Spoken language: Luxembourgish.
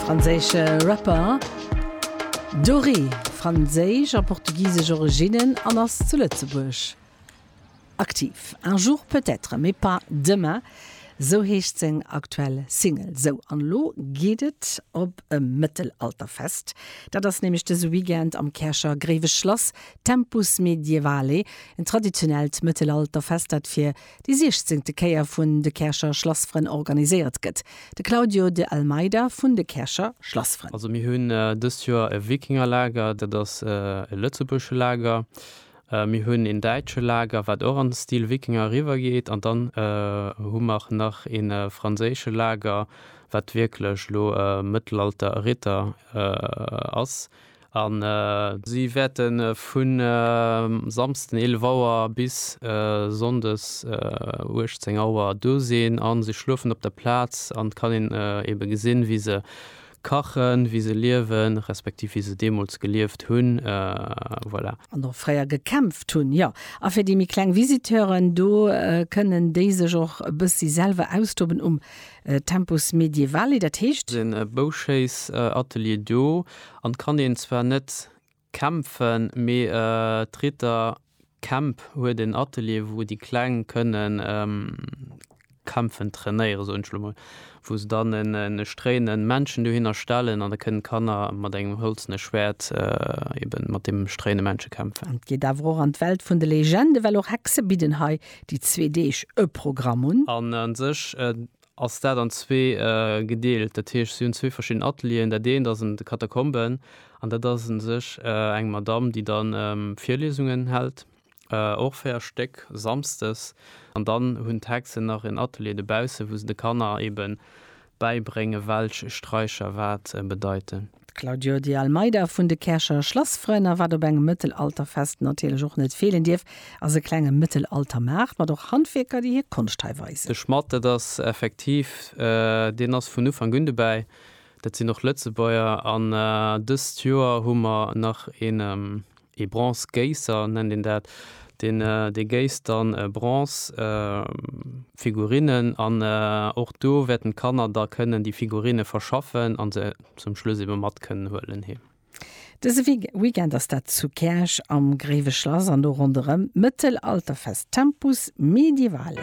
Franséische Rapper Dori, franséisch a portugisesch Originnen an ass zu Lëtzebuerg aktiv. Un jour peut-être, mais pas demain, sou heescht seng aktuell Single. Sou, an elo geet et op e Mëttelalterfest. Dat ass nämlech dëse Weekend am Käercher Gréiweschlass, Tempus Medievale, en traditionellt Mëttelalterfest, dat fir déi siechzéngte Kéier vun de Käercher Schlassfrënn organiséiert gëtt, de Claudio de Almeida vun de Käercher Schlassfrënn. Also mir hunn dëst Joer e Wikingerlager, dat ass e lëtzebuergesche Lager, mir hunn een däitsche Lager, wat och an Stil Wikinger eriwwer geet, an dann hu mer nach ee franséische Lager, wat wierklech elo Mëttelalter-Ritter ass. An si wäerte vu Samsden 11 Auer bis Sonndes 18 Auer do sinn a se schluefen op der Plaz an et kann een eebe gesinn, wéi se kachen, wéi se liewen, respektiv wéi se deemools gelieft hunn. Voilà. An och fréier gekämpft hunn. Jo, a fir déi méi kleng Visiteuren, do kënnen déi sech och e bëssi selwer austoben um Tempus Medievali. Dat heescht. Sinn e Bouschéissatelier do An kann een zwar net kämpfen, mee d'Ritter Camp huet en Atelier wou déi Kleng kënnen kämpfen trainéieren, soen ech lo mol, wou se dann e stréinen Männchen dohinner stellen an da kënnen d'Kanner mat engem hëlzene Schwäert eben mat deem stréine Männchen kämpfen. Et geet awer och an d'Welt vun de Legenden, well och Hexe bidden hei déi zwee Deeg e Programm un. An a sech ass dat an zwee gedeelt. Dat heescht, si hunn zwee verschidden Atelieren. Dat eent ass an de Katakomben an dat ass u sech eng Madamm, déi da Virliesungen hält, och véier Stéck, samsdes. An dann hunn d'Hexen nach en Atelier dobausse, wou se de Kanner eebe bäibréngen, welch Straicher wat bedeiten. D'Claudio de Almeida vun de Käercher Schlassfrënn. A wat op engem Mëttelalterfest natierlech och net feelen dierf, ass e klenge Mëttelaltermaart mat och Handwierker, déi hir Konscht hei weisen. De Schmadd, dat ass effektiv, deen ass vun Ufank un dobäi. Dat sinn och Lëtzebuerger an dëst Joer hu mer nach een ee Bronzegéisser nennt een dat, deen dee géisst dann Bronzefigurinnen an och do wäerten d'Kanner da kënnen déi Figurine verschaffen an se zum Schluss ebe mat kënnen huelen heem. Dëse Weekend ass dat zu Käerch am Gréiwe Schlass an do ronderëm d'Mëttelalterfest Tempus Medievale.